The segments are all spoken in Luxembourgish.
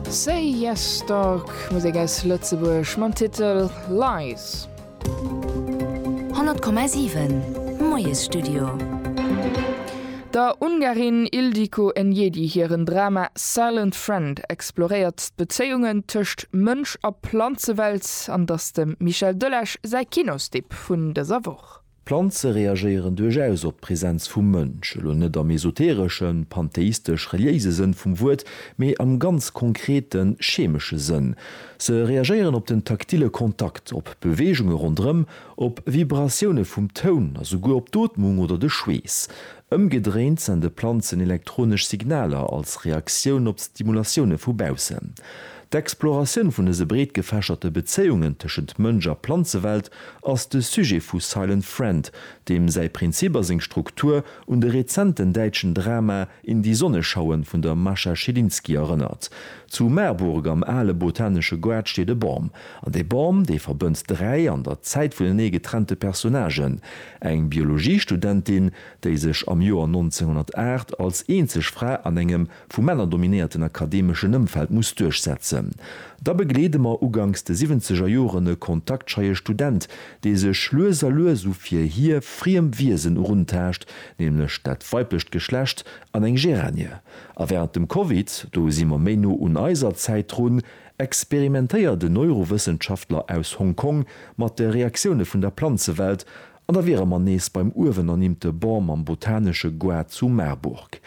Say Yes Dog, Musek aus Lëtzebuerg mam Titel Lies. 100,7 Moiesstudio. Der Ungarin Ildiko Enyedi hiren Drama Silent Friend exploréiert d'Bezéiungen tëscht Mënsch a Planzewelt an dass dem Michel Delage säi Kinostipp vun dëser Woch. Planze reagéieren duerchaus op d'Präsenz vum Mënsch, elo net am esotereschen, pantheistesch-reliéise Sënn vum Wuert, mee am ganz konkreten, chemesche Sënn. Se reagéieren op den taktile Kontakt, op Beweegunge ronderëm, op Vibratioune vum Toun a souguer op d'Ootmung oder de Schweess. Ëmgedréint sende Planzen elektronesch Signaler als Reaktioun op d'Stimulatioune vu baussen. D'Exploratioun vun dëse breet gefächerte Bezéiungen tëschent Mënsch a Planzewelt ass de Sujet vu Silent Friend, deem säi Prinzip a seng Struktur un de rezenten däitschen Drama In die Sonne schauen vun der Mascha Schilinski erënnert. Zu Marburg am ale botanesche Goart steet e Bam. An dee Bam, dee verbënnt dräi an der Zäit vunenee getrennte Personnagen, eng Biologiestudentin, déi sech am Joer 1908 als eenzeg Fra an engem vu Männer dominéierten akademeschen Ëmfeld muss duerchsetzen. Da begleede mer uganks de siwwenzeger Joren e kontaktscheie Student, dee sech lues a lues u fir hie friem Wiesen eruntaascht, nämlech dat weiblecht Geschlecht an eng Géranie. A wärend dem Covid, do si mer méi no un eiser Zäit drun, experimentéiert en Neurowëssenschaftler aus Hong Kong mat de Reaktioune vun der Planzewelt An da wiere mer nees beim uewen ernimmte Bon mam botanesche Goût zu Marburg.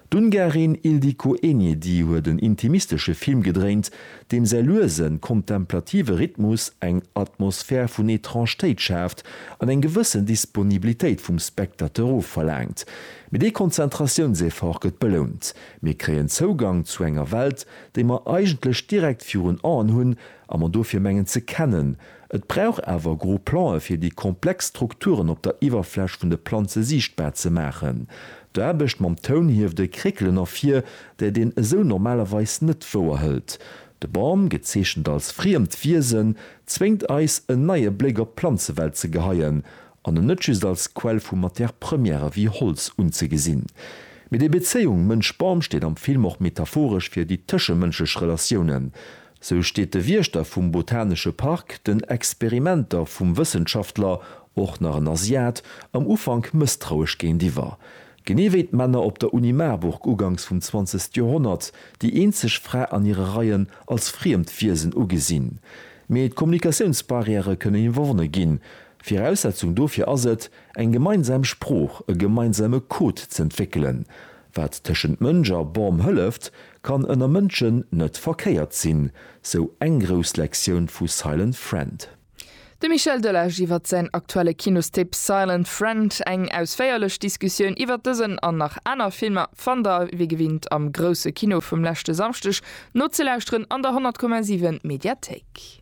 D'Ungarin Ildikó Enyedi huet en intimistesche Film gedréint, deem säi luesen, kontemplative Rhythmus eng Atmosphär vun Etraangtéit schaaft an eng gewëssen Disponibilitéit vum Spectateur ofverlaangt. Mee dee Konzentratiounseffort gëtt belount, mir kréien Zougang zu enger Welt, déi mer eigentlech direkt virun Aen hunn a mer dofir mengen ze kennen, Et brauch awer gro Plan'e fir déi komplex Strukturen op der Iwwerfläch vun de Planze siichtbar ze maachen. D'Aarbecht mam Toun hieft e Kréckelen ervir, dat een esou normalerweis net wouerhëlt. De Bam, gezeechent als friemt Wiesen, zwéngt eis en neie Bléck op d'Planzewelt ze geheien an en net just als Quell vu Matière-premièrë wéi Holz unzegesinn. Mee déi Bezéiung Mënsch-Bam steet am Film och metaphoresch fir déi tëschemënschlech Relatiounen. Sou steet de Wiechter vum Botanesche Park den Experimenter vum Wëssenschaftler, och nach en Asiat, am Ufank mësstrauesch géintiwwer. Genee wéi d'Männer op der Uni Marburg uganks vum zwanzegste Joerhonnert, déi eenzeg Fra an hire Reien als friemt Wiesen ugesinn. Mee d'Kommunikatiounsbarrièrë kënnen iwwerwonne ginn. Viraussetzung dofir ass et, eng gemeinsam Sprooch, e gemeinsame Code z'entwéckelen. Wat tëschent Mënsch a Bam hëlleft, kann ënner Mënschen net verkéiert sinn, sou eng grouss Lektioun vu Silent Friend. De Michel Delage iwwer säin aktuelle Kinostipp Silent Friend. Eng ausféierlech Diskussioun iwwer dësen an nach aner Filmer fannt der wéi gewinnt am Grousse Kino vum leschte Samschdeg nozelauschteren an der 100,7 Mediathéik.